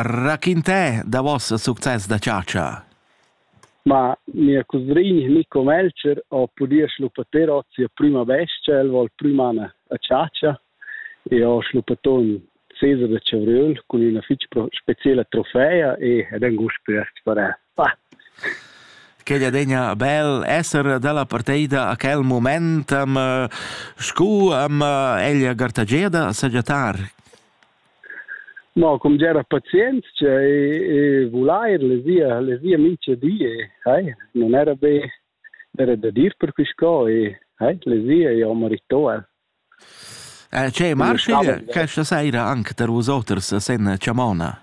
Raquintè da voss success da chatscha. Ma mia cusrin Nico Melcher ho pudì schluppater hoz sia prüma bestia, el voul prüma anar a chatscha e ho schluppato ün seser da chavriöl cun üna fich speciela trofea e ed ün gust prest parè. Ah! Quegl adegna bel esser dalla parteida a quel mument, am scu am ella gartageda sagiatar. Mo cum gera pazienzia e, e vulair le via, le via mincha di e hai, non era be era da dir per quisco e hai, le via è un ritual. Eh, c'è Marshall, questa sera anche per vosoters sen Chamona?